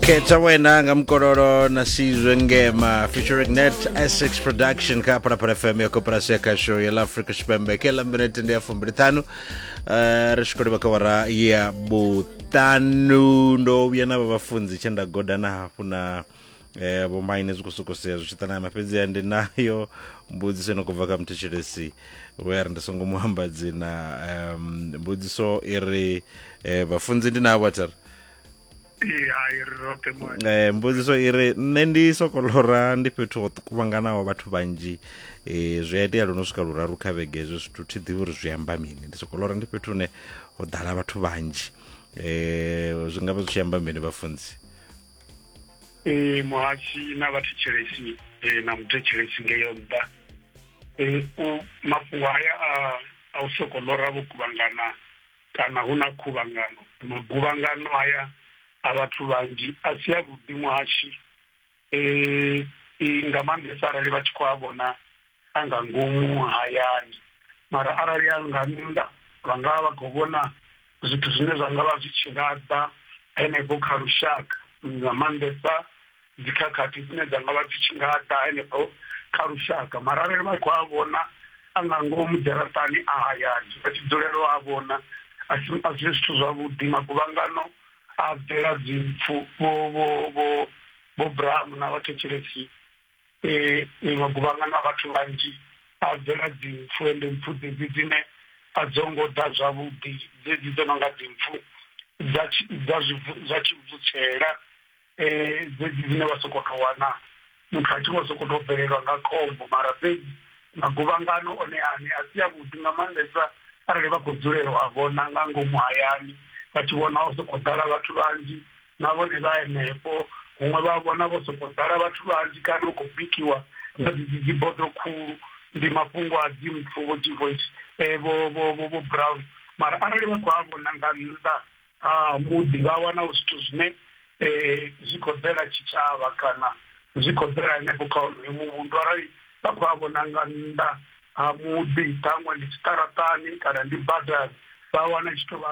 khetha wena nga mukololo na sizwe ngema featuring net essex production kha phalaphala fm ya koporasi ya khasho ya la afrika tshipembe ke la minete ndi ya fumbili ṱhanu Eh, ri tshi khou livha kha wara ya vhuṱanu ndo vhuya na vha vhafunzi tshe nda godana hafhu na eh, vhomaine zwi khou sokou sea zwi tshi ṱanama fhedziha ndi nayo mbudziso ino khou bva kha muthetshelesi we a ri ndi songo mu amba dzina um, mbudziso i ri eh, vhafunzi ndi navho athari Ee, hai ri roṱhe mwana Eh, mbudziso i ri nṋe ndi sokolora ndi fhethu ho kuvhanganaho vhathu vhanzhi eh, zwi a itea luno swika luraru kha vhege hezwo zwithu thi ḓivhi uri zwi amba mini ndi sokolora ndi fhethu hune ho ḓala vhathu vhanzhi eh, zwi nga vha zwi tshi amba mini vhafunzi ee muhasi na vhathetshelesi ee na muthetshelesi ngeyo nṱha ee u mafhungo haya a a u soko lora vho kuvhangana kana hu na khuvhangano maguvhangano haya a vhathu vhanzhi a si a vhuḓi muhasi ee nga maanḓesa arali vha tshi khou a vhona a nga ngomu hayani mara arali a nga nnḓa vha nga vha vha khou vhona zwithu zwine zwa nga vha zwi tshi laṱa henefho kha lushaka nga maanḓesa dzikhakhathi dzine dza nga vha dzi tshi nga ḓa henefho kha lushaka mara arali vha khou a vhona a nga ngomu dzharaṱani a hayani vha tshi dzulelo a vhona a si zwithu zwavhuḓi maguvhangano a bvela dzimpfu vho vho vho vho bramu na vhathetshelesia maguvhangano a vhathu vhanzhi a bvela dzimpfu ende mpfu dzedzi dzine a dzo ngo ḓa zwavhuḓi dzedzi dzo no nga dzimpfu dza tshibvutshela dzedzi dzine vha sokou tou wana muthu a tshi vho sokou tou bvelelwa nga khombo mara fhedzi maguvhangano one aṋe a si avhuḓi nga maanḓesa arali vha khou dzulela u a vhona nga ngomu hayani vha tshi vhona ho sokou ḓala vhathu vhanzhi na vhone vha henefho huṅwe vha vhona vho sokou ḓala vhathu vhanzhi kana u khou bikiwa na dzidzi dzi bodo khulu ndi mafhungo a dzi mpfu vho dzi voice eh, vho vho vho vho brown mara arali vha khou a vhona nga nnḓa ha muḓi vha wana u zwithu zwine eh, zwi khou ḓela tshitshavha kana zwi khou ḓela henefho kha onoyo muvhundu arali vha khou a vhona nga nnḓa ha muḓi ṱhaṅwe ndi tshiṱaratani kana ndi badani vha wana tshi tou vha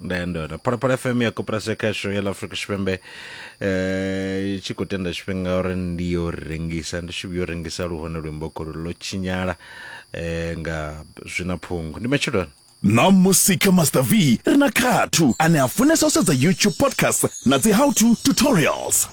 nda ya ndona phalaphala fm ya koporasi ya khasho ya la afrika tshipembe eh, i tshi khou tenda tshifhinga uri ndi yo rengisa ndi tshi vhuyo rengisa luhone luimbo kholo lo tshinyala eh, nga zwina phungu ndi matshiloni na musika master v ri na khathu ane a funesa u sedza youtube podcast na dzi how to tutorials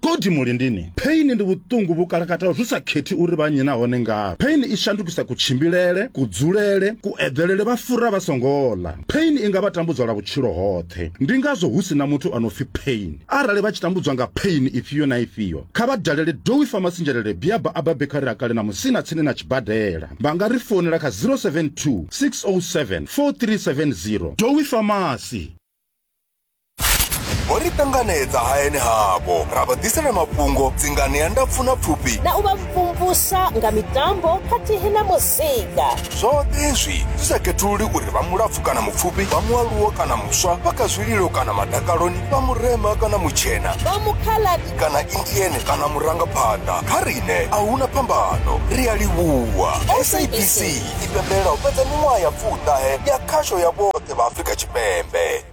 Kodi mulindini pheini ndi vhuṱungu vhu kalakataho zwi sa khethi uri vha nnyi nahone ngavhi. Pheini i shandukisa kutshimbilele, kudzulele, kueḓelele vha fura vha songo ḽa. Pheini i nga vha tambudza lwa vhutshilo hoṱhe. Ndi ngazwo hu si na muthu a no pfi pheini. Arali vha tshi tambudzwa nga pheini ifhio na ifhio, kha vha dalele Dowie Pharmacy Njelele Biaba Abba Bakery a kale na Musina tsini na tshibadela. Vha nga ri founela kha 072 607 4370. Dowie Pharmacy. vho ri ṱanganedza hayani havho ra vha ḓisela mafhungo dzingani ya ndapfu na pfufhi na u vha mvumvusa nga mitambo khathihi na muzika zwoṱhe izwi zwi sa khethululi uri vha mulapfu kana mupfufhi vha mualuwo kana muswa vha kha zwililo kana madakaloni vha murema kana mutshena vha mukhaladi kana indiene kana murangaphanḓa kha riṋe a huna phambano ri a livhuwa sabc i pembelela u fhedza miṅwaha ya pfuṱahe ya khasho ya vhoṱhe vha afrika tshipembe